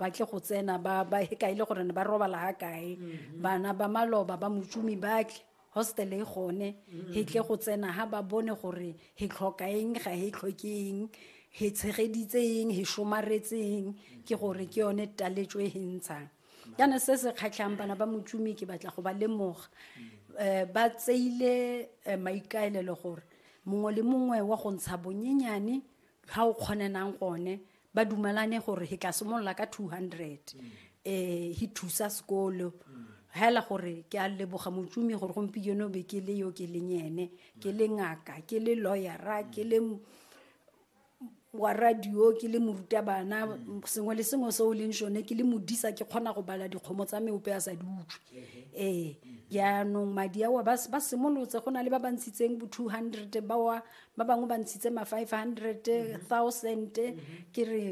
ba tle go tsena ba ba e kae le gore ne ba robala ha kae mm-hmm. bana ba maloba ba motsumi ba tle hostel e gone mm-hmm. he tle go tsena ha ba bone gore he tlhoka eng ga he tlhoke eng he tshegeditse eng he somaretseng ke gore ke yone taletso e he ntshang jaana se se kgatlhang bana ba motsumi ke batla go ba lemoga um ba tseile eh, maikaelelo gore mongwe le mongwe wa go ntsha bonyenyane ga o kgonenang gone ba dumalane gore he tla simolola ka two hundred um he thusa sekolo hela gore ke a leboga motsumi gore gompieno be ke le yo ke leng ene ke le ngaka ke le lawyera ke le wa radio ke le morutabana sengwe le sengwe se o leng sone ke le modisa ke kgona go bala dikgomo tsa meope a sa di utlwe ee jaanong madi ao ba simolotse go na le ba ba ntshitseng bo two hundred bawa ba bangwe ba ntshitse ma five hundred mm-hmm. thousand mm-hmm. ke re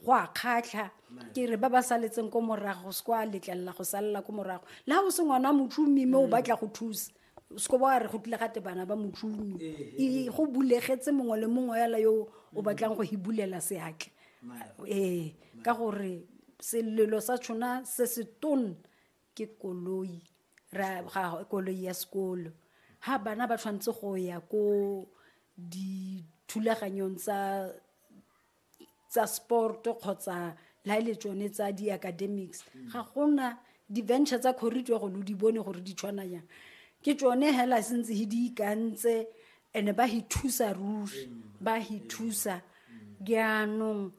go a kgatlha ke re ba ba saletseng ko morago se kwa letlelela go salela ko morago le ga o se ngwana wa motšhomi mme o mm. batla go thusa seko ba re go tlile gate bana ba motšhomi eh, eh, eh. go bulegetse mongwe le mongwe yala yo o mm. batlang go hibulela seatle ee ka gore selelo sa tshona se se tone ke koloi ra ga koloi ya sekolo ha bana ba tshwanetse go ya ko dithulaganyong tsa tsa sport kgotsa la ile tsone tsa di academics ga gona di venture tsa corridor go lo di bone gore di tshwana yang ke tsone hela sentse he di ikantse ene ba hi thusa ruri ba hi thusa jaanong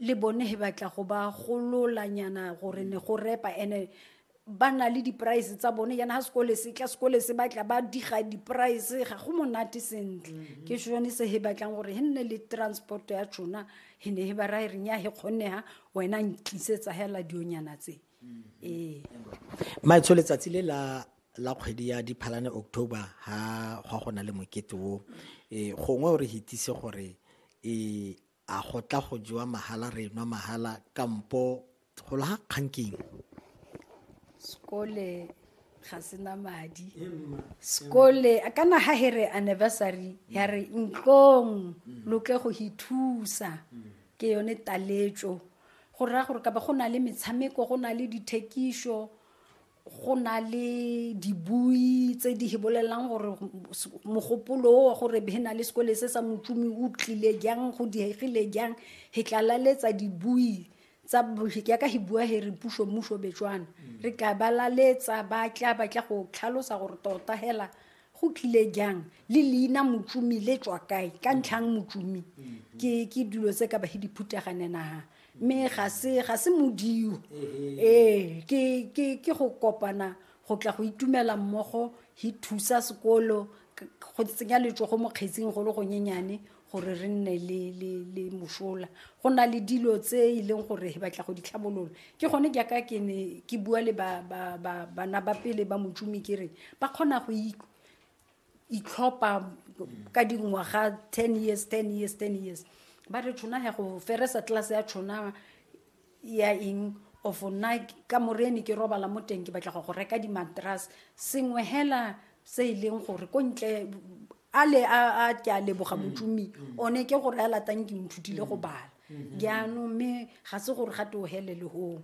le bone he batla go ba gololanyana gore ne go repa ene ba na le di-price tsa bone yana ga sekole se tla sekole se batla ba diga di-price ga go monate sentle mhm. ke sone se he batlang gore he nne le transport ya tšona he ne he ba rae reng ya he kgonega wena ntlisetsa hela dionyana tse mhm. ee maetsho letsatsi le la la kgwedi ya diphalane october ga gwa go na le mokete o e gongwe o re hitise gore e A go tla go jewa mahala re nwa mahala kampo golo ga kgang keng? Sekole ga sena madi. Sekole ka na ha here anniversary ya re ntlong lo tle go hi thusa. Ke yone taletso go raya gore ka ba go na le metshameko go na le dithekiso go na le dibui tse di bolelelang gore mogopolo o wa gore he na le sekole se sa motsumi o tlile jang go diegile jang he tlalaletsa dibui tsa yaka he bua he re puso mmuso betswana re tla balaletsa ba tla ba tla go tlhalosa gore tota hela go tlile jang le leina motsumi le tswa kae ka ntlhang motsumi ke ke dilo tse ka bahe diphutaganenaga mme ga se ga se modio ee ke ke ke go kopana go tla go itumela mmogo hi thusa sekolo go tsenya letsogo mo kgetsing go le gonyenyane gore re nne le mosola go na le dilo tse e leng gore he batla go di tlhabolola ke gone jaaka ke ne ke bua le bana ba pele ba motšomi ke re ba kgona go itlhopha ka dingwaga ten years ten years ten years ba re tshona ya go feresa tlelase ya tshona ya eng of nna ka morene ke robala mo teng ke batla go go reka di-matras sengwe hela se e leng gore ko ntle a le a a ke a leboga motsomi one ke gore a latang ke nthutile go bala jaanong mme ga se gore ga te o hele le gong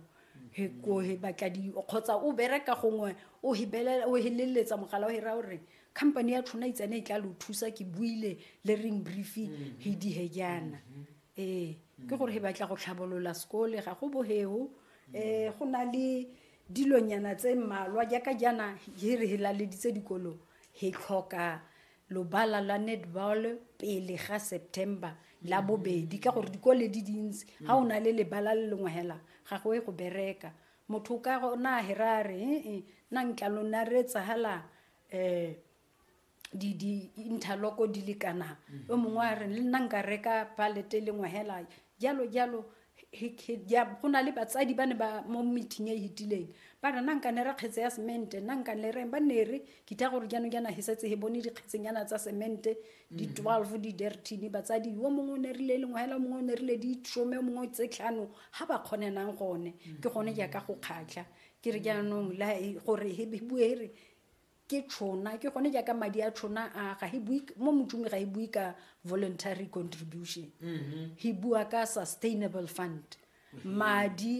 he ko he batla di kgotsa o bereka gongwe o hebelela o heleletsa mogala o hera gore company ya tshwana itsane e tla lo thusa ke buile le ring brief he di he jaana ee ke gore he batla go tlhabolola sekole ga go boheo um go na le dilonyana tse mmalwa jaaka jaana he re helaleditse dikolong He tlhoka lobala la netball pele ga september la mm-hmm. bobedi ka gore dikole di dintsi ga mm-hmm. o na le lebala le lengwe hela ga go e go bereka motho ka go na hera re ee eh, eh, na ntla lo na re tsagala um eh, di di interloko di le kana mm-hmm. o mongwe a re le nna nka reka palete e lengwe hela jalo jalo go na le batsadi ba ne ba mo meeting e hitileng ba re na nkane re kgetse ya semente na nkane reng ba ne re kita gore jaanong jaana he setse he bone dikgetsenyana tsa semente di mm. twelve di dertine batsadi yo mongwe o ne rile lengwe hela mongwe o ne rile di some o mongwe tse tlhano ga ba kgonenang gone ke gone jaaka go kgatlha ke re jaanong gore he bue re ke tšhona ke gone jaaka madi a tšhona a ga he bue mo motšong ga e bue ka voluntary contribution he bua ka sustainable fund madi